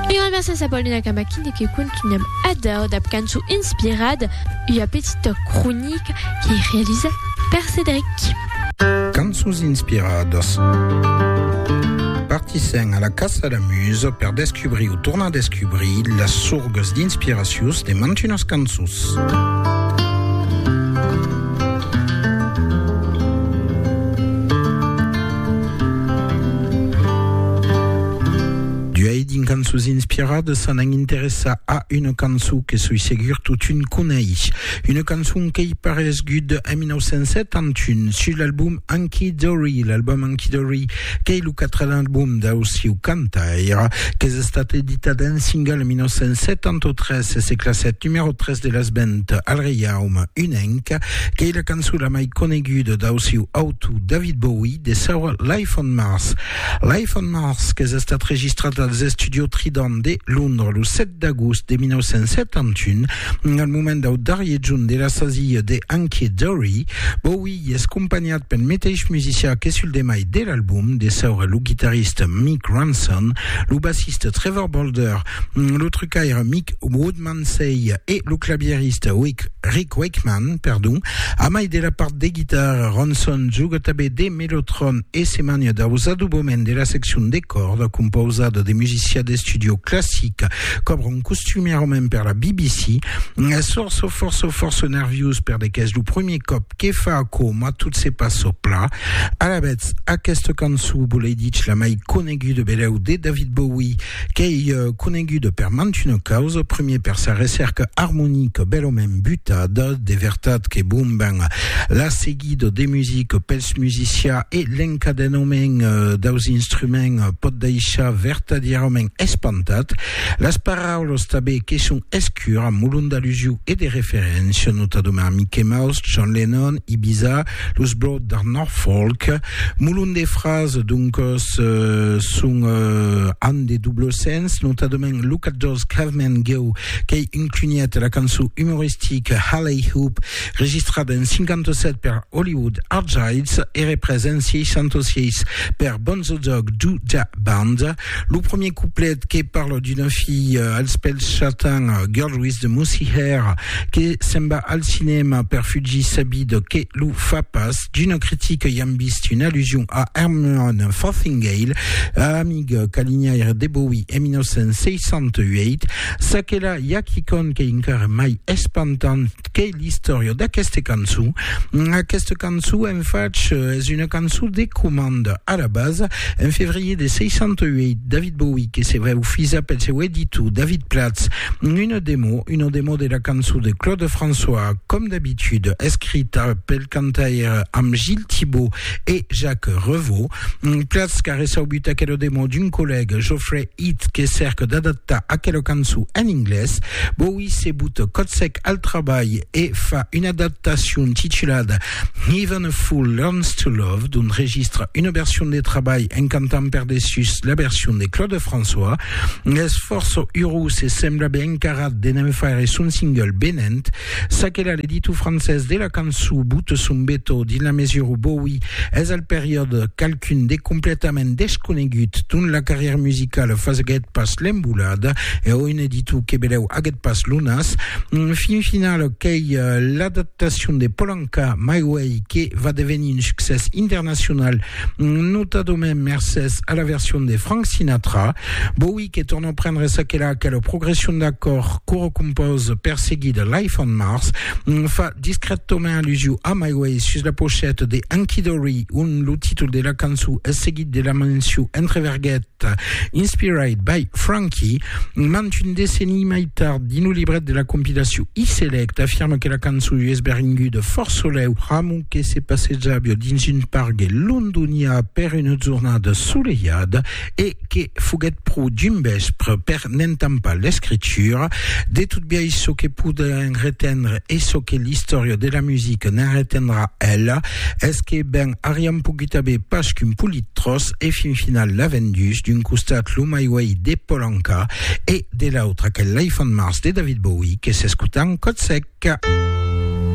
Un grand merci a Paulina Kamakine que continuem a daur dab cançon inspirada, ua petita cronica qu'ei realisada per Cédric. Cançons inspiradas. Partissèm a la caça la musa per descubrir o tornar descubrir las sorgas d'inspiracions de mantunas cançons. D'uei dins cançons inspiradas s'anam interessar a una cançon que soi segur totun coneish. Una cançon qu'ei paresgut en 1971 sus l'album Hunky Dory, l'album Hunky Dory qu'ei lo quatren album dau sieu cantaire, qu'es estat editat en single en 1973 e se classet numèro 3 de las ventes al Reiaume Unenc, qu'ei la cançon la mai coneguda dau sieu autor. to David Bowie de saur Life on Mars. Life on Mars qu'es estat registrat als Estudio Trident de Londres lo 7 d'agost de 1971, al moment dau darrier junt de la sasia de Hunky Dory. Bowie es companhat pel meteis musicià que sul demai de l'album, de saur lo guitarrista Mick Ronson, lo bassista Trevor Bolder, lo trucaire Mick Woodmansey e lo clavierista Rick Rick Wakeman, perdon, a mai de la part de guitarra, Ronson juga tanben de mellotron e se mania daus adoboments de la seccion de còrda compausada de musicià d'estudiò classic, cobra un costumièr òme per la BBC, es fòrça fòrça fòrça nerviós perdè qu'es lo premier còp que fa aquò mas tot se passa plan. Alavetz, aquesta cançon, volei dich la mai coneguda belèu de David Bowie, Qu'ei conenguda per mantuna causa, primier per sa recèrca armonica bèlament butada, de vertat que bon ben la seguida de musica pels musicians e l'encadenament daus instruments pòt daishar vertadièrament espantat, las paraulas tanben que son escuras, molon d'alusiu e de referéncia, notadament Mickey Mouse, John Lennon, Ibiza, Los Broad de Norfolk, molon de frases, doncos son an de doble sens, notadament lo 14 Caveman Go, qu'ei un cunhet la cançon umoristica Halley Hoop, registrada en 57 per Hollywood Argyles e represa en 66 per Bonzo Dog Doo Dah Band. Lo premier couplet que parle d'una fille euh, als pèls chatins, euh, Girl with the Moosey Hair, que se'n va al cinèma per fugir sa vida que lo fa pas. D'una critica i am vist una allusion a Herman Fothingale, amic calinhaire de Bowie en 1968. Çaquelà, i a quicòm qu'ei encara mai espantant qu'ei l'istòria d'aqueste cançon. Aquesta cançon, en fach, es una cançon de comanda. A la basa, en fevrier de 68, David Bowie que se veu fisa pel seu editor David Platz una demo, una demo de la cançon de Claude François, com d'habitud, escrita pel cantaire amb Gilles Thibaud e Jacques Revaux. Platz qu'a reçaubut aquela demo d'un collègue, Geoffrey It que cèrque d'adaptar aquela cançon en inglés, Bowie se but cotsèc al trabalh e fa una adaptacion titulada Even a Fool Learns to Love, d'ont registra una version de trabalh en cantant per dessús la version de Claude François. Es fòrça urós e sembla ben encarat de ne'n faire son single venent. Çaquelà, l'editor francés de la cançon Boute son Beto, dins la mesura où Bowie es al periòde qualqu'un de completament desconegut dont la carrièra musicala faguèt pas l'embolada, e oi, un editor que belèu aguèt pas lo nas. Fin final, qu'ei l'adaptacion de Polanka, My Way, que va devenir un succès internacional, notadament mercés a la version de Frank Sinatra. Bowie, que torna prendre ça que la quelle progression d'accord coro compose perseguida Life on Mars fa discrètement allusion a My Way sus la pochette de Anki Dory on lo títol de la cançó es seguit de la menció entre verguet Inspired by Frankie mant un decenni mai tard dins lo libret de la compilació E-Select afirma que la cançó es beringuda fort soleu Ramu que se passejava dins un pargue londonià per una jornada solejada e que foguèt pro dimbespr per n'entampar l'escritura de tot biais çò que podèm retendre e çò que l'istòria de la musica ne'n retendrà ela es que ben ariam pogut aver pas qu'un polit tròç e fin final la vendús d'un costat lo My Way de Paul Anka e de l'autre aquel Life on Mars de David Bowie que s'escota en còt sec.